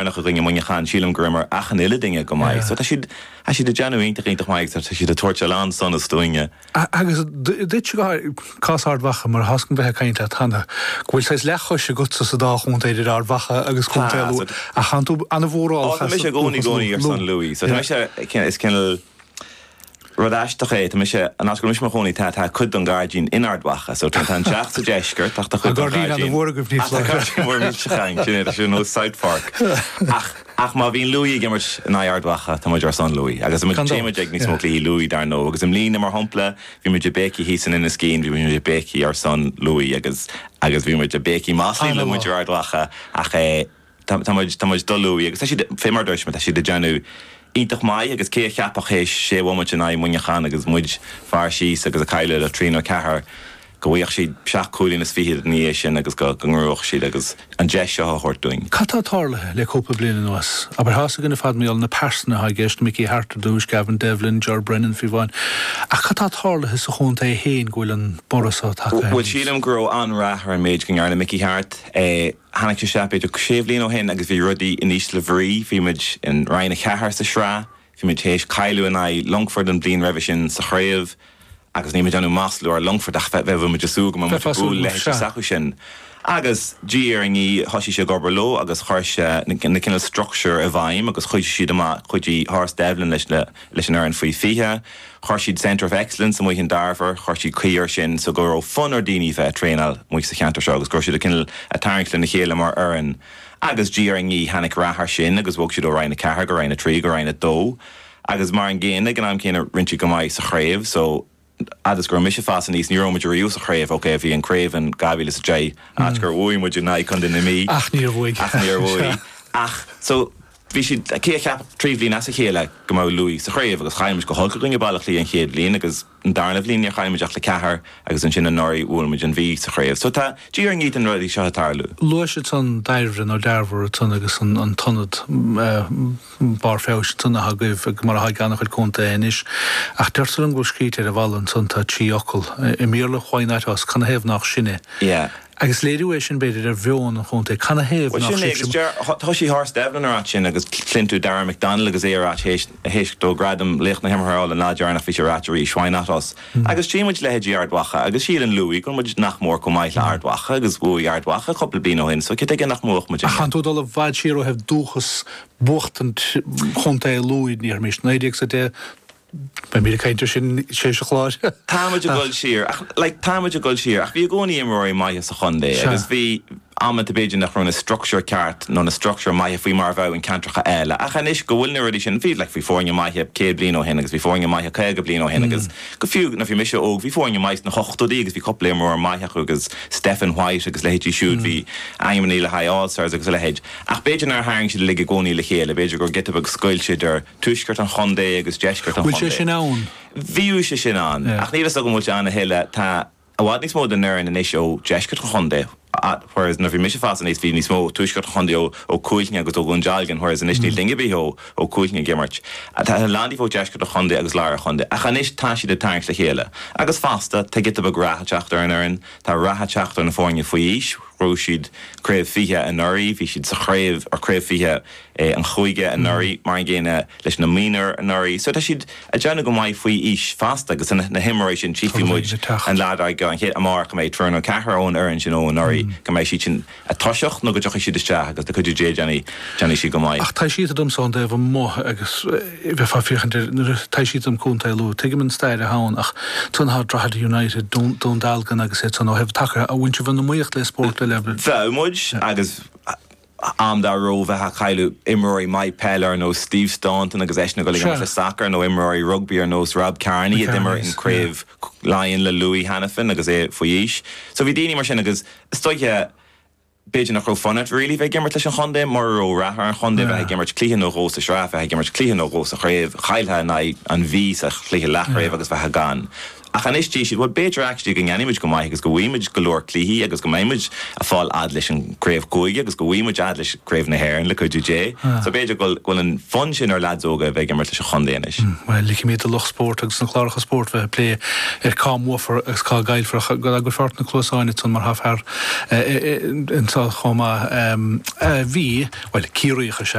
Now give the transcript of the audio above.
deireanach i gcoinne Muineacháin, sílim go rabhamar achan uile duine go maith. So tá siad, tá siad ag déanamh iontach, iontach maith agus tá siad ag tabhairt a lán sonas dúinne. Agus duitse go háirithe, cás Ard Mhacha, mar tá's agam ó bheith ag caint leat cheana, go bhfuil saghas leathchois agatsa sa dá chontae, idir Ard Mhacha agus contae Lú, ach tánn tú an-mhórálach as an dúchas. Tá mise i gcónaí, gcónaí ar son Lú, so tá mise, is cineál, Rud aisteach é, tá mise, an áit go raibh mise i mo chónaí, tá, tá cuid den ghairdín in Ard Mhacha, so tá, tá an teach sa deisceart ach tá cuid den ghairdín, An gairdín fhada mhór agaibh níos láidre. Tá gairdín mhór millteach againn, sin é, tá sé ar nós Southfork. Ach, ach má bhíonn Lú ag imirt in aghaidh Ard Mhacha, tá muid ar son Lú agus tá muid, téann muid ag níos mó cluichí Lú dar ndóigh agus i mbliana mar shampla, bhí muid ag béicigh thíos in Inis Caoin, bhí muid ag béicigh ar son Lú agus, agus bhí muid ag béicigh maslaí le muintir Ard Mhacha ach eh. Tá, tá muid, tá muid do Lú agus tá siad, fé mar a dúirt mé, tá siad ag déanamh iontach maith agus cé a cheapfadh théis sé bhomaite in aghaidh Muineacháin agus muid fear síos agus ag cailleadh le trí nó ceathair go bhfuigheadh siad seacht cúilín is fichead ina dhiaidh sin agus go, go mbuafadh siad agus an deis seo a thabhairt dúinn. Cad tá tarlaithe le cúpla bliain anuas? Abair, tá's againn ar fad mar gheall ar na pearsana atá i gceist, Mickey Harte ar dtúis, Gavin Devlin, Ger Brennan faoi bhun, ach cad tá tarlaithe sa chontae fhéin go bhfuil an borradh so tagtha aníos? Bhuel sílim go raibh an-rath ar an méid go ndearna Mickey Harte eh, Tháinig sé isteach b'fhéidir sé bhliain ó shin agus bhí rudaí in ísle bhrí. Bhí muid in Roinn 4 sa Sraith, bhí muid tar éis cailleadh in aghaidh Longfort an bhliain roimhe sin sa chraobh agus níl muid ag iarraidh maslú ar Longfort ach bheadh, bheadh muid ag súil go mbeadh muid ag bualadh leithéidí s'acu sin agus diaidh ar ndiaidh thosaigh sé ag obair leo agus chuir sé na cineál struchtúir i bhfeidhm agus chuidigh siad amach, chuidigh Horse Devlin leis an fhoireann faoi 20. Chuir siad Centre of Excellence amuigh in Darver, chuir siad caoi ar sin so go raibh fonn ar daoine bheith ag traenáil amuigh sa cheantar seo agus go raibh siad ag cineál ag tarraingt lena chéile mar fhoireann agus diaidh ar ndiaidh tháinig rath ar sin agus bhog siad ó Roinn 4 go Roinn 3 go Roinn 2 agus mar an gcéanna ag an am céanna rinne siad go maith sa chraobh so fhad is go raibh mise ag fás aníos ní raibh muid riamh sa chraobh, ok bhí an craobh in 2010 áit gur bhuaigh muid in aghaidh Contae na Mí ach níor bhuaigh ach níor bhuaigh ach so. Bhí siad, cé a cheapfadh, trí bhliain as a chéile go mbeadh Lú sa chraobh agus chaill muid go holc i gcoinne Baile Átha Cliath an chéad bhliain agus an darna bhliain níor chaill muid ach le ceathair agus ansin anuraidh bhuail muid an Mhí sa chraobh so tá, diaidh ar ndiaidh tá na rudaí seo ag tarlú. Luais ansan Dairbhre nó Darver ansan agus an t-ionad barr feabhais ansan athá agaibh mar athá ag ana-chuid contaetha anois ach deirtear liom go bhfuil scríte ar an bhfalla ansan tá trí fhocal i mBéarla Why not us? Canathaobh nách sinne? Yeah. Agus léiriú é sin, b'fhéidir, ar mheon an chontae. Canathaobh nach sibhse. Bhuel, sin é, agus deir, thoisigh Horse Devlin ag ráit sin agus cluin tú Darragh McDonnell agus é ag ráit théis, théis dó gradam laoch na himeartha a fháil an lá deireanach bhí sé ag ráit arís, why not us? Agus tchí muid leithéidí Ard Mhacha agus síleann Lú go bhfuil muid nach mór chomh maith le hArd Mhacha agus bhuaigh Ard Mhacha cúpla bliain ó shin so cad tuige nach mbuafadh muid inniu? Ach tánn tú ag dul i bhfad siar ó thaobh dúchas, buachtaint chontae Lú, ní thuigimís, naoi déag is a de, Beidh muid ag caint ar sin tréis an chláir Tá muid ag ach. dul siar ach, like, tá muid ag dul siar ach bhí i gcónaí imreoirí maithe sa chontae Sea. agus bhí amanta b'fhéidir nach raibh na structure ceart nó na structure maithe faoi mar a bheadh i gceantracha eile ach anois go bhfuil na rudaí sin, bhí, like, bhí foirne maithe céad bliain ó shin agus bhí foirne maithe caoga bliain ó shin agus go fiú nuair a bhí mise óg bhí foirne maithe sna hochtóidí agus bhí cúpla imreoir maith acu agus Stephen White agus a leithéidí siúd, bhí ainmnithe le haghaidh All-Stars agus a leithéid ach b'fhéidir nár tharraing siad uilig i gcónaí le chéile, b'fhéidir go raibh giota beag scoilt idir tuaisceart an chontae agus deisceart an Bhfuil sé chontae. sin ann? Bhíodh sé sin ann, Yeah. ach níl 'fhios agam an bhfuil sé ann a thuilleadh. Tá i bhfad níos mó den fhoireann anois ó deisceart an chontae, whereas nuair a bhí mise ag fás aníos bhí níos mó ó tuaisceart an chontae, ó Cuailgne agus ó Dhún Dealgan, whereas anois níl duine ar bith ó ó Cuailgne ag imirt. Tá a lán díobh ó deisceart an chontae agus lár an chontae, ach anois tá siad ag tarraingt le chéile. Agus fosta, tá giota beag rath ag teacht ar an fhoireann, tá rath ag teacht ar na foirne faoi aois, ghnóthaigh siad craobh fiche anuraidh, bhí siad sa chraobh, or craobh fiche, an chúige anuraidh, mar an gcéanna leis na Mionúir anuraidh, so tá siad a' déanamh go maith faoi aois fosta agus tá na himreoirí sin, tchífidh muid an lá dar gcionn, an chéad, amárach a mbeidh triúr nó ceathrar ón fhoireann sin ó anuraidh, go mbeidh siad sin a' toiseacht nó go dtiocfaidh siad isteach agus le cuidiú Dé déanfaidh, déanfaidh siad go maith. Ach tá sé ait domsa ón dtaobh amuigh agus bheifeá ag féachaint ar, nuair a, tá sé ait dom contae Lú, tuigim an stair atá ann ach tionchar Drogheda United, Dún, Dún Dealgan agus iad san ó thaobh sacair de, a bheith in iomaíocht le spóirt eile. Bhíodh muid agus. am dá raibh, bheith ag cailleadh imreoirí maithe peile ar nós Steve Staunton agus eisean ag dul i ngleic le sacar, nó imreoirí rugbaí ar nós Rob Kearney a d'imir in Craobh Laighean le Lú cheana féin agus é faoi aois. So bhí daoine mar sin agus is dóiche b'fhéidir nach raibh fun it really bheith ag imirt leis an chontae mura raibh rath ar an chontae, bheith ag imirt cluiche nó dhó sa sraith, bheith ag imirt cluiche nó dhó sa chraobh, chailltheá in aghaidh an Mhí sa chluiche leathchraobh agus bheith gone. Ach anois tchí siad, bhuel b'fhéidir actually go ndéanfaidh muid go maith agus go bhfaighidh muid go leor cluichí agus go mbeidh muid a' fáil fhad leis an chraobh chúige agus go bhfaighidh muid fhad leis craobh na hÉireann le cuidiú Dé. So b'fhéidir go bhfuil, go bhfuil an fonn sin ar lads óga a bheith ag imirt leis an chontae anois. Bhuel, ligimid do lucht spóirt agus na cláracha spóirt bheith a' plé ar cá mbuafar agus cá gcaillfear ach go dtagfaidh fort na cluasáin ansan mar tá fear anseo chomh maith, bhí, bhuel Ciarraíoch is.